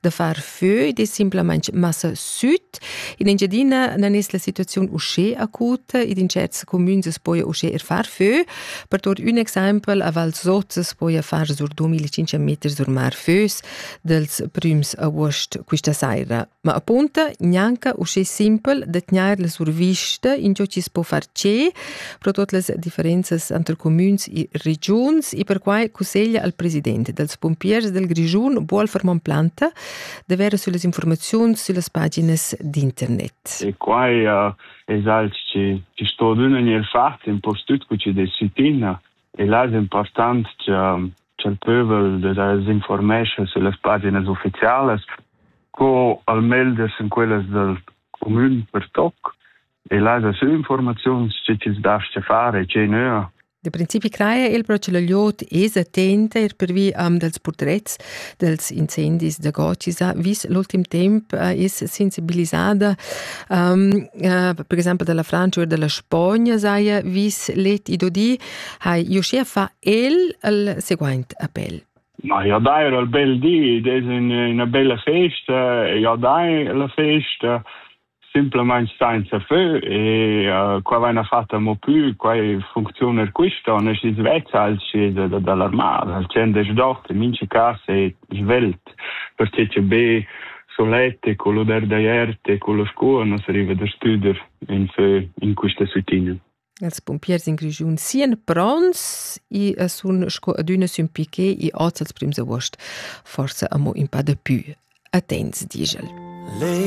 da far fö ed è simplamain massa süt. In Engiadina nan es la situaziun uschè acuta ed in certs comüns es poja uschè er far fö. Per tuot ün exaimpel, a Val Sot es poja far sur 2500 meter sur mar fös dels prüms august quista saira. Ma appunta, gnanca uschè simpel da tgnair la survista, in giò chi's po far tschè, pro tot las differenzas entre comüns e regiuns e perquai cusseglia al president dels pompiers del Grischun Wolfermann Planta d'avere sulle informazioni sulle pagine d'internet. E qua uh, es alch che ci sto d'una ner fat un po' stut cu ci de sitina e là è important che il pövel de desinformesce sulle pagine ufficiali co al meglio in quelle del comune per toc e laja sü informaziuns tge chi'ls dascha far e che nöa. Da principi craja el però che la liot es attenta er pervi am dals purtrets dels incendis da Gotisa, vis l'ultim temp eh, es sensibilisada, um, uh, per exemple dalla Francia o dalla Spagna saja vis let i dodi, hai iuschea fa el al seguaint appel. Ma ja dai al bel di, des in una bella festa, ja dai la festa, simplamain senza fö e uh, qua vaina fatta mo plü quai funcziuna quista on es svezza al scesa da dall'armada al cen des dort in mince casa e svelt per che che be solette con lo der daierte con lo scuo non arriva da studer in fö in quista süttina Els pumpiers in Grischun sien pronts e sun sco adüna sün piquet e oz als prims august, forsa amo in pa da pü. Attents, digel. Lei